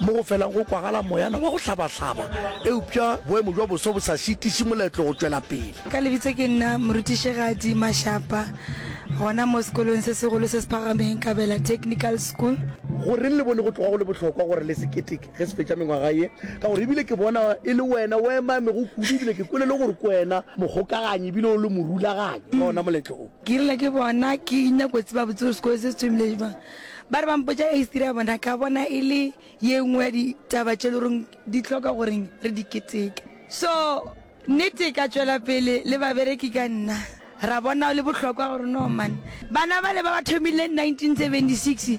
mo go felang go kwagala moyana wa go hlabahlaba, eupša boemo bja boso bo sa šitiše moletlo go tšwela pele. Ka lebitso ke nna Morutišigadi Mashapa, gona mo sekolong se segolo se se phagameng, Kabela Technical School. Goreng le bone go tloga go le bohlokwa gore le se keteke ge se fetša mengwaga ye? Ka gore e bile ke bona e le wena o emamego kudu, e bile ke kwele le gore ke wena mogokaganyi e bile o le morulaganyi wa ona moletlo o. Ke rile ke bona ke nyako tseba botse gore sekolo se se thomile bjang. Ba re ba mpotša history ya bona, ka bona e le ye nngwe ya ditaba tše e le goreng di hloka gore re di keteke. So nnete ka tšwela pele le babereki ka nna, ra bona go le bohlokwa gore no man bana bale ba ba thomileng 1976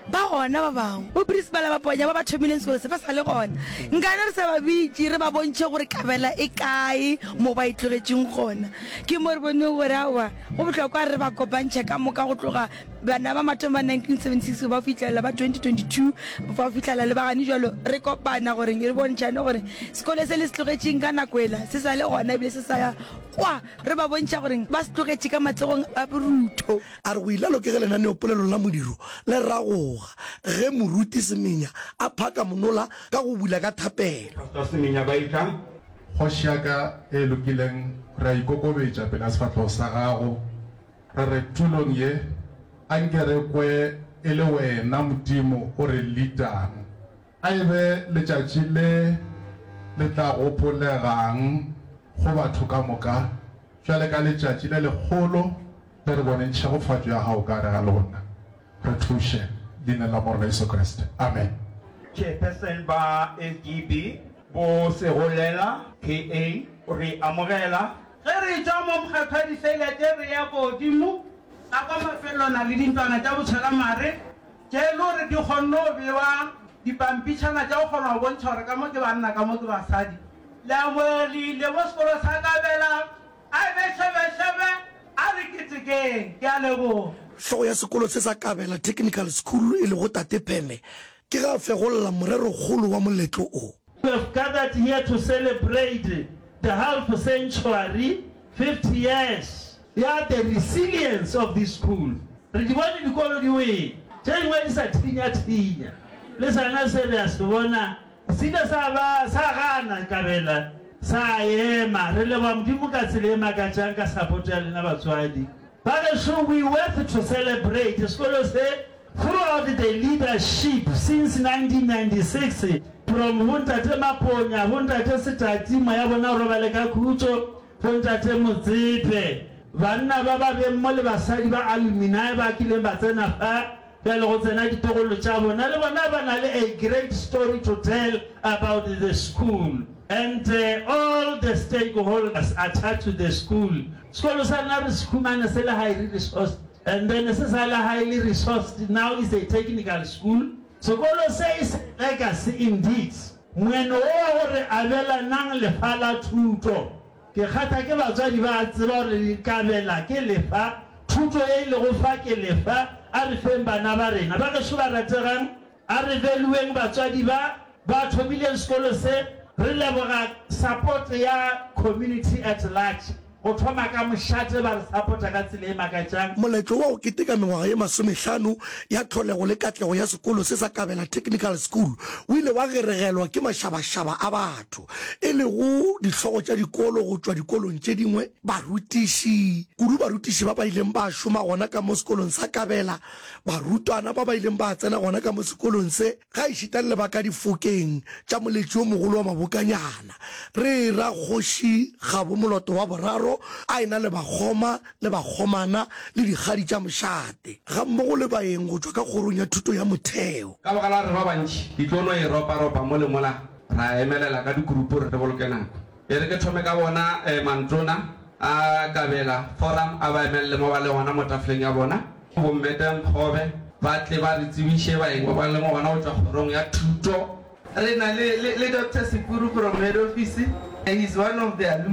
ba gona ba bangwe, bo principala ba ponya ba ba thomileng sekolo se ba sa le gona. Nkane re sa ba bitše re ba bontšhe gore kabela e kae mo ba e tlogetšeng gona. Ke mo re boneng gore aowa go bohlokwa gore re ba kopantšhe ka moka go tloga Bana ba mathong ba 1976 go ba fitlhelela ba 2022 ba fitlhela le bagane jalo re kopana gore re bontšhane gore sekole se le se tlogetšeng ka nako ela se sa le gona ebile se sa ya kwa re ba bontšha gore ba se tlogetše ka matsogong a borutho. A re go ilalo ke ge lenaneopolelo la modiro le ragoga ge moruti Semenya a phaka monola ka go bula ka thapelo. Pastor Semenya ba itla, Kgoši ya ka e lokileng, re a ikokobetša pela sefahlogo sa gago. Re re tulong ye, a nke re kwe e le Wena Modimo o re leadang. A e be letšatši le le tla gopolegang go batho ka moka, bjale ka letšatši le legolo le re boneng tšhegofatšo ya Gago ka gare ga lona. Re thuše, Leineng la Morena Jesu Kriste. Amen. Chairperson ba SGB, bo Segolela KA, re amogela. Ge re etšwa mo mokgatho wa diselete re eya kogodimo ka kwa mafelelwana le dintwana tša botšhelamare tše e lego gore di kgonne go bewa dipampitšhana tša go kgona go bontšha gore ka mo ke banna ka mo ke basadi. Leamogelegile mo sekolo sa Kabela, a ebe šebešebe, a re ketekeng. Ke a leboga. Hlogo ya sekolo se sa Kabela Technical School e lego Tate Pheme ke ge a fegolla morerokgolo wa moletlo o. We have gathered here to celebrate the half century, 50 years, ya the resilience of this school Re di bone dikolo di wele, tše dingwe di sa thinya-thinya Le sona se re a se bona se ile sa ba sa gana kabela sa ema Re leboga Modimo ka tsela e makatšang ka support ya lena batswadi ba gešo We worth to celebrate sekolo se Throughout the leadership since 1996, from go Ntate Maponya, go Ntate Setati, moya bona o robale ka khutšo, go Ntate Motsepe, banna ba ba beng mo le basadi ba alumini ba kileng ba tsena fa, bjale go tsena ditogolo tša bona, le bona ba na le a great story to tell about the school and all the stakeholders attached to the school. Sekolo sa rena re se humane se le high resource. And then se sa la ha e le resourced, now is a technical school. Sekolo se e se legacy indeed. Moeno wo wa go re abelanang lefa la thuto. Ke kgatha ke batswadi ba a tseba gore re ikabela ke lefa, thuto ye e lego fa ke lefa, a re feng bana ba rena. Bagešo ba rategang, A re veluweng batswadi ba ba thomileng sekolo se. Re leboga support ya community at large, go thoma ka mošate ba re support-a ka tsela e makatšang. Moletlo wa go keteka mengwaga ye masomehlano ya tlholego le katlego ya sekolo se sa Kabela Technical School o ile wa geregelwa ke mašabašaba a batho, e lego dihlogo tša dikolo go tšwa dikolong tše dingwe, barutiši, kudu barutiši ba ba ileng ba šoma gona ka mo sekolong sa Kabela. Barutwana ba ba ileng ba tsena gona ka mo sekolong se, gaešita le ba ka difokeng tša moletši yo mogolo wa mabokanyana, re ra kgoši Kgabo Moloto wa Boraro a e-na le bakgoma le bakgomana le dikgadi tša mošate, gammogo le baeng go tšwa ka Kgorong ya Thuto ya Motheo. Ka baka la re ba bantši, di tlo no e ropa-ropa mo le mola, ra emelela ka dikurupu gore re boloke nako. E re ke thome ka bona mantona a kabela forum a ba emelele mo ba le gona mo tafoleng ya bona. Bo Mme Tenkgobe ba tle ba re tsebiše baeng ba ba leng gona go tšwa kgorong ya thuto. Re na le Doctor Sepuru from head office, he is one of the alumni.